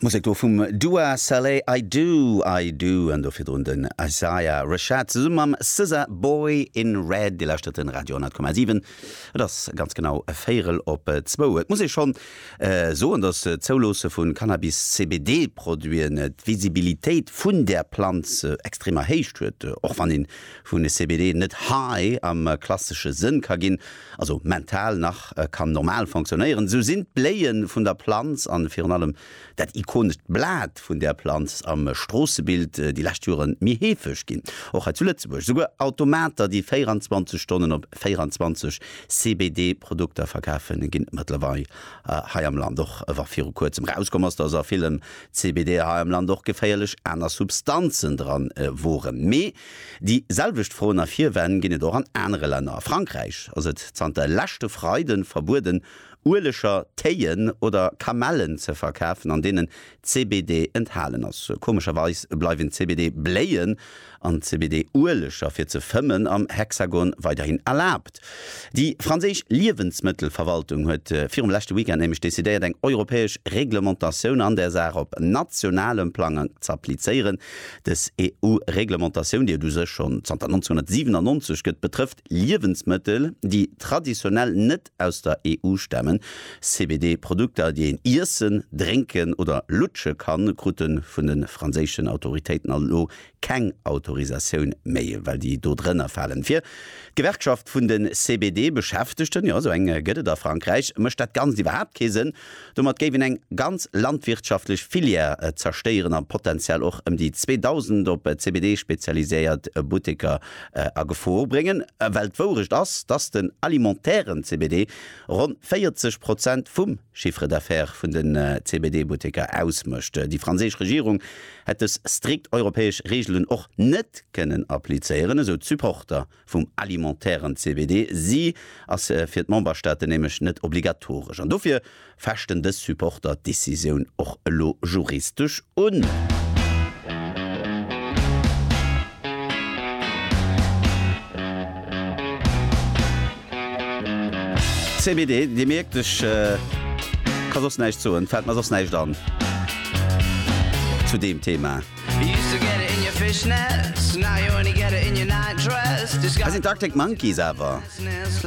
D'Musek do vum Dua Saleh, I Do, I Do, an do virdrun den Isaiah Rashad zesumme mam SZA, Boy in Red. Dir lauschtert de Radio 10,7. Et ass ganz genau e Véierel op zwou. Et muss ee schonn soen, datt d'Zouloosse vu Cannabis-CBD-Produiten d'Visibilitéit vun där Planz extrem erhéicht huet. Och wann ee vun CBD net high am klassesche Sënn ka ginn, also mental nach kann normal fonctionnéieren, esou sinn d'Bléie vun der Planz a virun allem dat ikonescht Blat vun där Planz am Stroossebild déi lescht Jore méi heefeg ginn, och hei zu Lëtzebuerg. Souguer Automater, déi 24 Stonnen op 24 CBD-Produkter verkafen, ginn et mëttlerweil hei am Land och. Wa viru Kuerzem erauskomm ass, dass a villem CBD hei am Land och geféierlech aner Substanzen dran woren, mee Déi selwecht Froen a Virwänn ginn et och an anere Länner. A Frankräich ass et zanter leschte Freide verbueden, Ueleger, Téien oder Kamellen ze verkafen, an deenen CBD enthalen ass. Komescherweis bleiwen d'CBD-Bléien an d'CBD-Ueleger fir ze fëmmen am Hexagon weiderhin erlaabt. Markt. Déi franséisch Liewensmëttelverwaltung huet virum leschte Weekend nämlech decidéiert, eng europäesch Reglementatioun an där Saach op nationalem Plang z'applizéieren. Dës EU-Reglementatioun, déi et u sech schonn zanter 1997 gëtt, betrëfft Liewensmëttel, déi traditionell net aus der EU stamen. CBD-Produkter, déi een iessen, drénken oder lutsche kann, krute vun de franséischen Autoritéiten elo keng Autorisatioun méi, well déi do drënner falen. Fir d'Gewerkschaft vun de CBD-Beschäftegten, jo, esou eng gëtt et a Frankräich, mécht dat Ganzt iwwerhaapt kee Sënn. Domat géif een eng ganz landwirtschaftlech Filière zerstéieren a potenziell och ëm déi 2.000 op CBD spezialiséiert Butteker a Gefor bréngen. Well d'Wourecht ass, dass den alimentären CBD ronn 40 Prozent vum Chiffre d'affaires vun de CBD-Butteker ausmécht. Déi franséisch Regierung hätt dës strikt europäesch Reegelen och net kënnen applizéieren, esou d'Supporter vum alimentairen CBD. Si ass fir d'Memberstaaten nämlech net obligatoresch an dofir fechten dës Supporter d'Decisioun och elo juristesch un. CBD, Dir mierkt, ech ka soss näischt soen, fällt mer soss näischt an zu deem Thema. Hei sinn d'Arctic Monkeys awer.